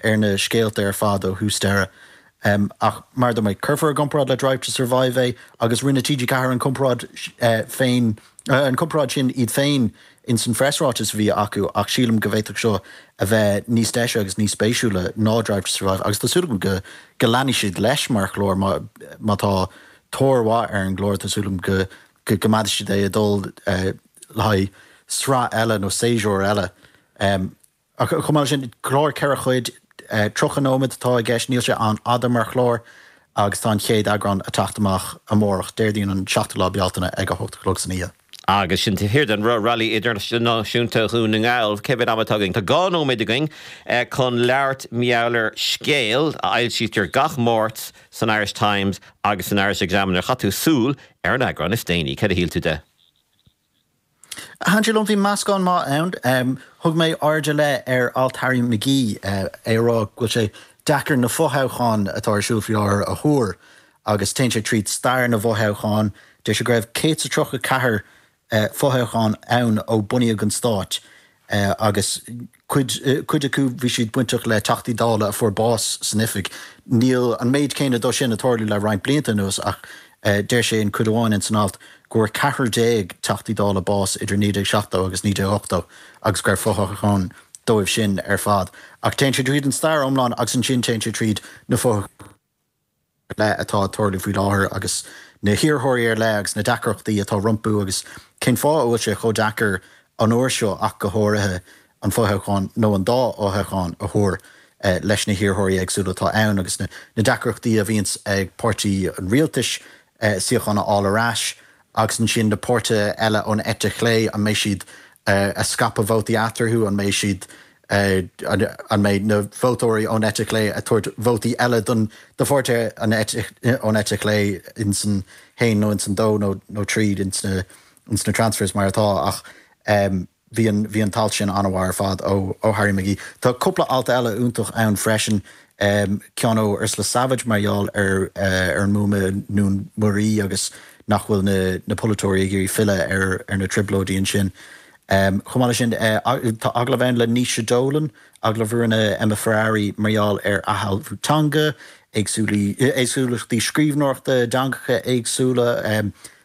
ar na scéalta ar fad ó thús deireadh. Ach mar a dúirt mé, cuirfear i gcomparáid le Drive to Survive é agus rinne TG4 an chomparáid féin, an chomparáid sin iad féin in san phreasráiteas a bhí acu ach sílim go bhféadfadh seo a bheith níos deise agus níos spéisiúla ná Drive to Survive agus tá súil agam go leanfaidh siad leis mar chlár má tá tóir mhaith ar an gclár tá súil agam go gcoimeádfaidh siad é ag dul le haghaidh sraith eile nó séasúr eile. Ach chomh maith leis sin, clár ceithre chuid, 30 nóiméad atá i gceist, níl sé an-fhada mar chlár agus tá an chéad eagrán a teacht amach amárach, Déardaoin an 7ú lá Bealtaine ag a hocht a chlog san oíche. Agus sin Taobh Thiar den Railí Idirnáisiúnta Dhún na nGall, cé mhéad ama atá againn? Tá dhá nóiméad againn chun labhairt mar gheall ar Scéal a fhoilsítear gach Máirt san Irish Times agus san Irish Examiner. Chaith tú súil ar an eagrán is déanaí, céard a shíl tú de? Thaitin sé liom, bhí meascán maith ann. Thug mé aird ar leith ar alt Harry McGee, é ag rá go bhfuil sé deacair na fothoghcháin atá ar siúl faoi láthair a thuar agus téann sé tríd stair na bhfothoghchán. Deir sé go raibh 134 fothoghchán ann ó bunaíodh an stát. agus cuid cuid acu bhí siad bainteach le Teachtaí Dála a fuair bás san oifig. Níl an méid céanna dóibh sin a tarlú le roinnt blianta anuas ach deir sé i gcuid amháin ins an alt go bhfuair 14 Teachtaí Dála bás idir 1970 agus 1980 agus go raibh fothoghchán dóibh sin ar fad. Ach téann sé tríd an stair iomlán agus ansin téann sé tríd na fothoghcháin. leith atá ag tarlú faoi láthair agus na hiarrthóirí ar leith agus na deacrachtaí atá rompu agus cén fáth a bhfuil sé chomh deacair an uair seo ach go háirithe an fothoghchán nó an dá fhothoghchán a thuar leis na hiarrthóirí éagsúla atá ann agus na deacrachtaí a bhíonns ag páirtí an rialtais suíochán a fháil ar ais Agus ansin na páirtithe eile ón eite chlé, an mbeidh siad a scaipeadh vótaí eatarthu, an mbeidh siad, an mbeidh na vótóirí ón eite chlé a tabhairt vótaí eile don do pháirtithe ón eite chlé in san haon nó in san dó nó nó tríd in sna in sna transfers mar atá ach eh, Bhí an t-alt sin an-mhaith ar fad ó Harry McGee. Tá cúpla alt eile iontach ann freisin, ceann ó Ursula Savage mar gheall ar an mbuama i nDún Muirí agus nach bhfuil na polaiteoirí ag iarraidh filleadh ar na trioblóidí ansin. Chomh maith leis sin, tá agallamh ann le Naoise Dolan, agallamh a rinne Emma Ferrari mar gheall ar athshealbhú teanga, éagsúlachtaí scríbhneoireachta i dteangacha éagsúla,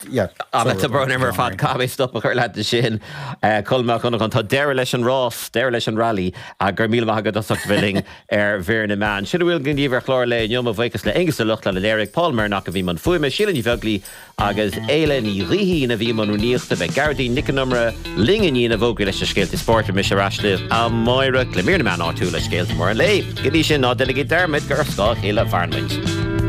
An t-am breithe ar fad caithfidh mé stop a chur leat ansin. Colm Mac Con Iomaire, tá deireadh leis an rás, deireadh leis an rally, ach go raibh míle maith agat as ucht a bheith linn ar Mhír na Meán. Sin a bhfuil againn daoibh ar chlár an lae inniu. Mo bhuíochas le Aonghus Ó Lochlainn a léirigh, Paul Mernock a bhí i mbun fuaime, Síle Ní Bheaglaoi agus Éile Ní Ghaoithín a bhí i mbun rúnaíochta, beidh Gearóidín Nic an Iomaire linn i ndiaidh na bhfógraí leis na scéalta spóirt beidh mise ar ais libh amárach le Mír na Meán áitiúil is scéalta móra an lae. Go dtí sin, ná déanaigí dearmad gur ar scáth a chéile a mhairimid.